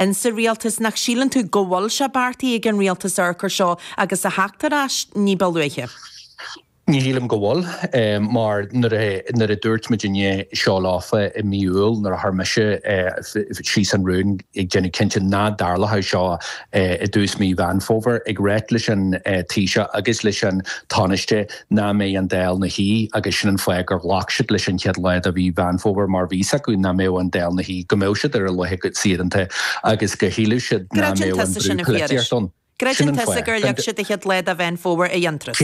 ins sa rialtas, nach síleann tú go bhfuil sé beartaithe ag an rialtas amharc air seo agus a theacht ar ais ní ba luaithe? Ní shílim go bhfuil, mar nuair a dúirt muidinne seo leofa i mí Iúil nuair a chuir mise síos an rún ag déanamh cinnte nach dtarlódh seo i dtús mí Mheán Fómhair, ag ráit leis an Taoiseach agus leis an Tánaiste nach mbeadh an Dáil ina shuí, agus sin an fáth gur ghlac siad leis an chéad lá de mhí Mheán Fómhair mar bhí fhios acu nach mbeadh an Dáil ina shuí, go mbeadh siad ar a laethe saoireanta agus go shílfeadh siad nach mbeadh an brú polaitíochta ann. Creideann tusa gur leag siad an chéad lá de Mheán Fómhair d'aon turas?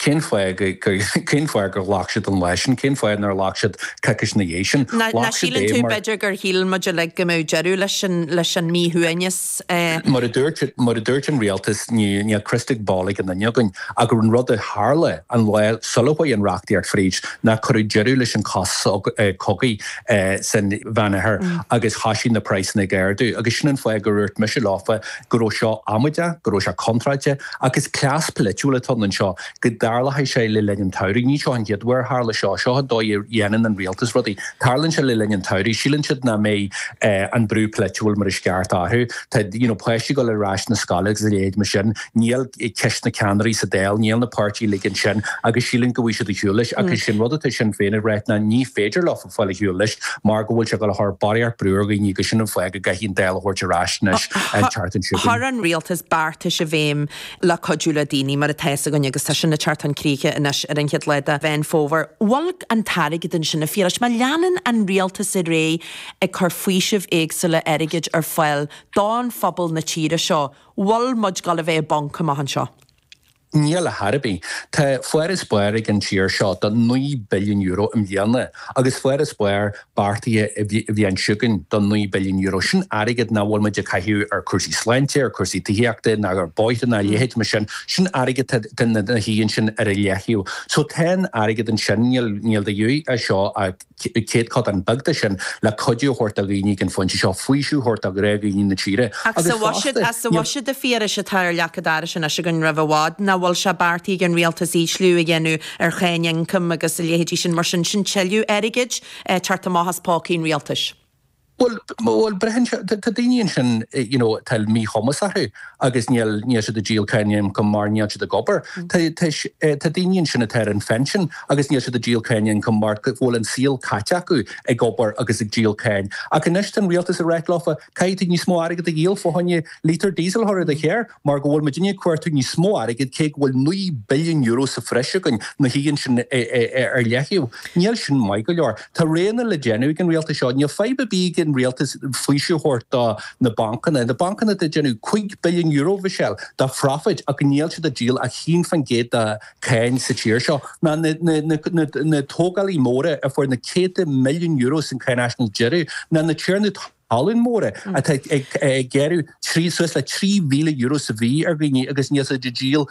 Cén fáth go, cén fáth gur ghlac siad an lá sin, cén fáth nár ghlac siad coicís ina dhiaidh sin? Nach síleann tú b'fhéidir gur shíl muid uilig go mbeadh deireadh leis an míshuaimhneas? S. Mar a dúirt an Rialtas, níl crystal ball ag aon duine againn, ach an rud a tharla an lá sular chuaigh an reachtaíocht fríd ná cuireadh deireadh leis an sos cogaidh san Mheán Oirthear agus thoisigh na praghsanna ag ardú. Agus sin an fáth gur dhúirt mise leofa go raibh seo amaideach, go raibh sé contráilte, agus cleas polaitiúil atá anseo. go dtarlóidh sé le linn an tsamhraidh. Ní seo an chéad uair ar tharla seo. Seo an dóigh a dhéanann an rialtas rudaí. Tarlaíonn sé le linn an tsamhraidh. Síleann siad nach mbeidh an brú polaitiúil mar is ceart orthu. Tá you know páistí ag dul ar ais na scoile agus a leithéid mar sin. Níl ceist na ceannairí sa Dáil, níl na páirtithe uilig ansin agus síleann go bhfaighidh siad ar shiúl leis ach sin rud atá Sinn Féin ag rá ná ní féidir leofa fáil ar shiúl leis mar go bhfuil sé ag dul a chur barraíocht brú ar dhaoine agus sin an fáth go gcaithfidh an Dáil a thabhairt ar ais anois an tseachtain seo. Chuir an rialtas beartais i bhfeidhm le cuidiú le daoine, mar atá a fhios againn, agus tá sin ag teacht chun críche anois ar an chéad lá de Mheán Fómhair. Bhfuil an t-airgead ansin, a Phiarais, má leanann an rialtas ar aghaidh ag cur faoisimh éagsúla airgid ar fáil do phobal na tíre seo. Bhfuil muid ag dul a bheith i bponc amach anseo. Níl ar chor ar bith. Tá farasbarr ag an tír seo de €9 billiún i mbliana agus farasbarr beartaithe an bhliain seo chugainn de €9 billiún, sin airgead nach bhfuil muid ag caitheamh ar chúrsaí sláinte, ar chúrsaí tithíochta ná ar bhóithre ná a leithéid mar sin, sin airgead atá ina shuí ansin ar leithligh. So tá an airgead ansin, níl de dhíth as seo ach céatadán beag de sin le cuidiú a thabhairt do dhaoine ag an phointe seo, faoiseamh a thabhairt do ghnáthdhaoine na tíre. Ach sa bhuiséad, a Phiarais, atá ar leac an dorais anois againn roimh i bhfad, nach bhfuil sé beartaithe ag an rialtas ísliú a dhéanamh ar cháin ioncaim agus a leithéidí sin. Mar sin, sin tuilleadh airgid ag teacht amach as pócaí an rialtais. Bhuel, bhuel, braitheann sé, tá daoine ansin, you know, atá míchumas orthu agus níl, níl siad ag díol cáin ioncaim mar níl siad ag obair. Tá, tá, tá daoine ansin atá ar an phinsean agus níl siad ag díol cáin ioncaim mar go bhfuil an saol caite acu ag obair agus ag díol cáin. Ach anois tá an rialtas ag ráit leofa, caithfidh tú níos mó airgid a dhíol fá choinne lítear diesel a chur i do charr. mar go bhfuil muidinne ag cuartú níos mó airgid, cé go bhfuil €9 billiún sa bhreis againn, ní thig linn sin a laghdú. Níl sin maith go leor. Tá roghanna le déanamh ag an rialtas seo. Níl fadhb ar bith ag an rialtas faoiseamh a thabhairt do na bancanna. Na bancanna atá ag déanamh €5 billiún, Mhichelle, de phrofit ach níl siad ag díol ach 1 faoin gcéad de cháin sa tír seo, ná na tógálaí móra a fuair na céadta milliún euro san cháinaisnéis deireadh, ná na tiarnaí talún. talún móra atá ag gearradh suas le €3,000 sa mhí ar dhaoine agus níl siad ag díol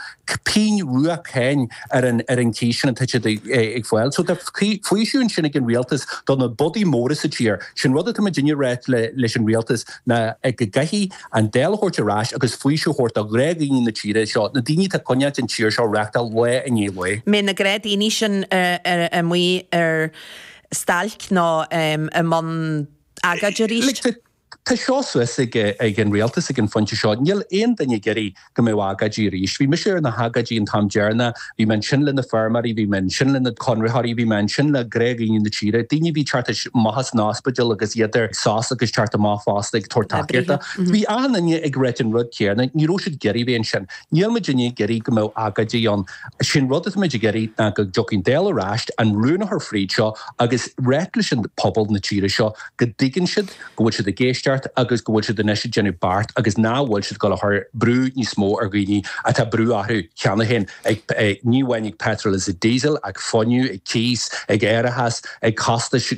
pingin rua cáin ar an chíos sin atá siad ag fáil. So tá faoiseamh ansin ag an Rialtas do na bodaigh móra sa tír. Sin rud atá muidinne ag ráit leis an Rialtas ná go gcaithfidh an Dáil a thabhairt ar ais agus faoiseamh a thabhairt do ghnáthdhaoine na tíre seo, na daoine atá ag coinneáilt an tír seo ag reáchtáil lá i ndiaidh lae. An mbeidh na gnáthdhaoine sin amuigh ar stailc nó i mbun agóid arís. Tá seo suas ag an rialtas ag an phointe seo. Níl aon duine ag iarraidh go mbeadh agóidí arís. Bhí mise ar na hagóidí an t-am deireanach, bhí mé ansin le na feirmeoirí, bhí mé ansin le na conraitheoirí, bhí mé ansin le gnáthdhaoine na tíre, daoine a bhí ag teacht amach as an ospidéal agus iad ar sos agus ag teacht amach fosta ag tabhairt tacaíochta. Bhí achan duine ag ráit an rud céanna, ní raibh siad ag iarraidh a bheith ansin. Níl muidinne ag iarraidh go mbeadh agóidí ann. Sé an rud atá muid ag iarraidh ná go dtiocfaidh an Dáil ar ais, an rún a chur fríd seo agus ráit leis an pobal na tíre seo go dtuigeann siad go bhfuil siad ag éisteacht agus go bhfuil siad anois ag déanamh beart agus nach bhfuil siad ag cur brú níos mó ar dhaoine atá brú orthu cheana féin ag ní amháin ag petrol is ag diesel, ag fuinneamh, ag cíos, ag árachas, ag costais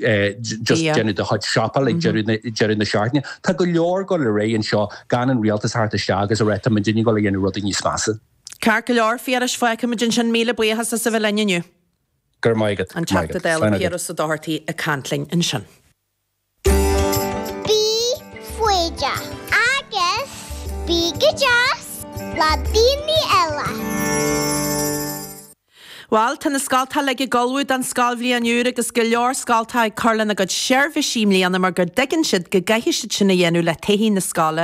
just déanamh do chuid siopáil ag deireadh na seachtaine. Tá go leor ag dul ar aghaidh anseo gan an rialtas a theacht isteach agus a rá tá muidinne ag dul a dhéanamh rudaí níos measa. Ceart go leor, a Phiarais, fágfaimid ansin, míle buíochas as a bheith linn inniu. Go raibh maith agat. An Teachta Dála Piaras Ó Dochartaigh ag caint linn ansin. Bhal, tá na scoltacha uilig ag ullmhú don scoilbhliain úr agus go leor scoltacha ag cur lena gcuid seirbhísí i mbliana mar gur dtuigeann siad go gcaithfidh siad sin a dhéanamh le taithí na scoile